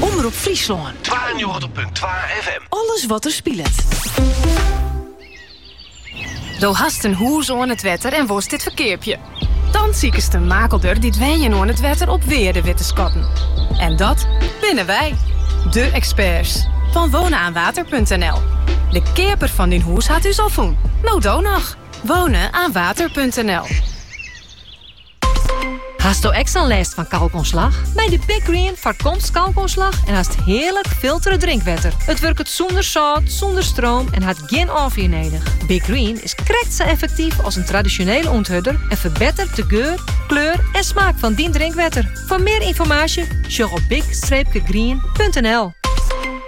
Omrop Fryslân. 92.2 FM. Alles wat der spilet. Do hast in hûs oan it wetter en wolst dit ferkeapje? Dan sikest in makelder dy't wenjen oan it wetter op wearde wit te skatten. En dat binne wy, de experts fan wonenaanwater.nl. De keaper fan dyn hûs hat ús al fûn. No do noch! Wonenaanwater.nl Hasto ek sa'n lêst fan kalkoanslach? Mei de Big Green foarkomst kalkoanslach en hast hearlik filtere drinkwetter. It wurket sûnder sâlt, sûnder stroom en hat gjin ôffier nedich. Big Green is krekt sa effektyf as in tradisjonele ûnthurder en ferbettert de geur, kleur en smaak fan dyn drinkwetter. Foar mear ynformaasje sjoch op big-green.nl.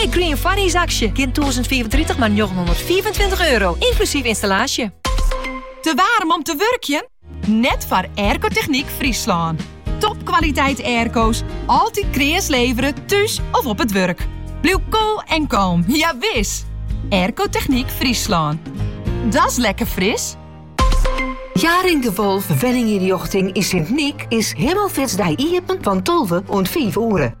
Big Green Funnies aksje. Gean 1035 maar 925 euro, inclusief installatie. Te warm om te wurkjen? Net voor Aircotechniek Friesland. Topkwaliteit airco's, altijd kreas leveren, thuis of op het werk. Blijf koel en kalm, ja wis! Aircotechniek Friesland. Dat is lekker fris. Jaring de Wolf Wenninginrichting in Sint-Niek is Himmelfitsdij iepen van 12 en 5 oeren.